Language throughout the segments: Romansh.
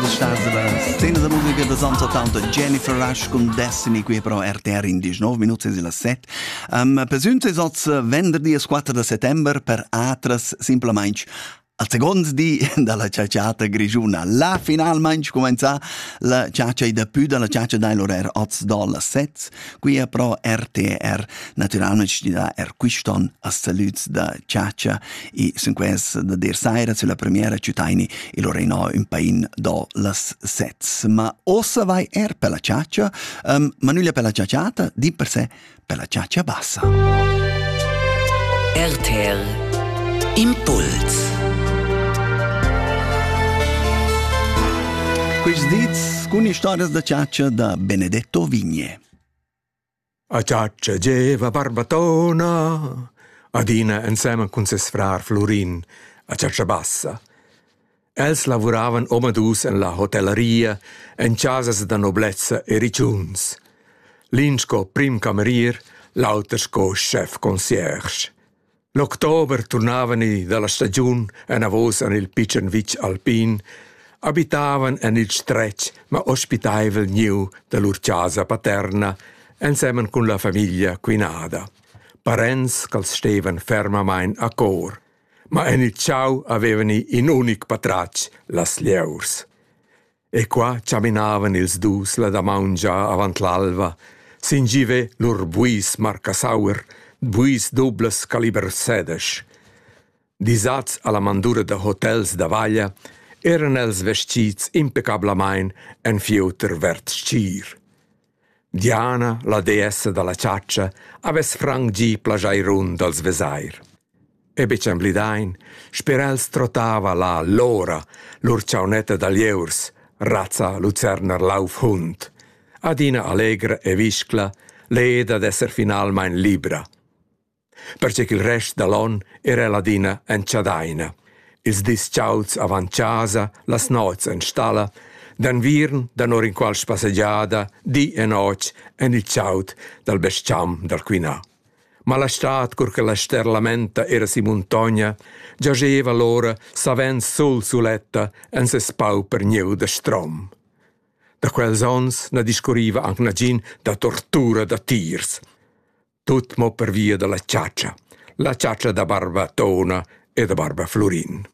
da la scena da musica da Santo Tanto Jennifer Rush cun Destiny qui pro RTR indisch 9 minut e las 7 um, Persüns es oz venderdi es 4 da settember per atras simplamaing al second di dalla ciaciata grigiuna. La finalmaing comenza la ciacia da pü dalla ciacia dai l'orer oz dal 7 Quia però RTR natüralmaing gnüda eir quist'on a salüds da chatscha e sun quest da dir saira sulla premiera ch'ütaini e Lorrainò ün pain do las sets. Ma ossa vai eir per la chatscha, um, ma nüglia per la chatsciata, di per se per la chatscha bassa. RTL Impuls Quist dits Cun istorias da ciaccia da Benedetto Vigne. A ciaccia geva Barbatona, adina ensemen cun ses frar Florin, a ciaccia bassa. Els lavuravan omadus en la hotellaria, en casas da noblezza e riciuns. L'in sco prim camerier, l'auter sco chef concierge. L'october turnavani dalla stagiun anavos en il pitschen vitg alpin, abitavan en il stretg ma ospitaivel gnieu da lur chasa paterna ensemen cun la famiglia quinada. Parents ch'als stevan fermamain a cor, ma en il chau avevani in unic patratg, las lieurs. E qua chaminavan ils dus la damaun già avant l'alva, sin givet lur buis marcasaur, buis dublas caliber sedesch. Disats alla mandura da hotels da vaglia, eran els vestits impecablamain en fieuter verd stgir. Diana, la deessa dalla chatscha, havess frangi plageirun dals vesair. E betg emblidain, sper els trottava la Lora, lur chaunetta da lieurs, razza lucerner laufhund, adina allegra e viscla, leda d'esser finalmain libra. perche ch'il rest da l'on era ladina en chadaina. Ils dis chauds avant chasa, las nots en stalla, d'enviern danor inqual spassegiada, di e notg en il chaud dal bes-cham dal Quinà. Ma la stad, cur che la ster lamenta era si muntogna, giascheva l'ora savens sul suletta en ses pauper gnieu da strom. Da quels onns na discurriva anc nagin da tortura da tiers. Tut mo pervia dalla chatscha, la chatscha da barba Tona e da barba Flurin.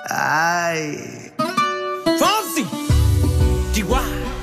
Ai. Fonsi! Di qua!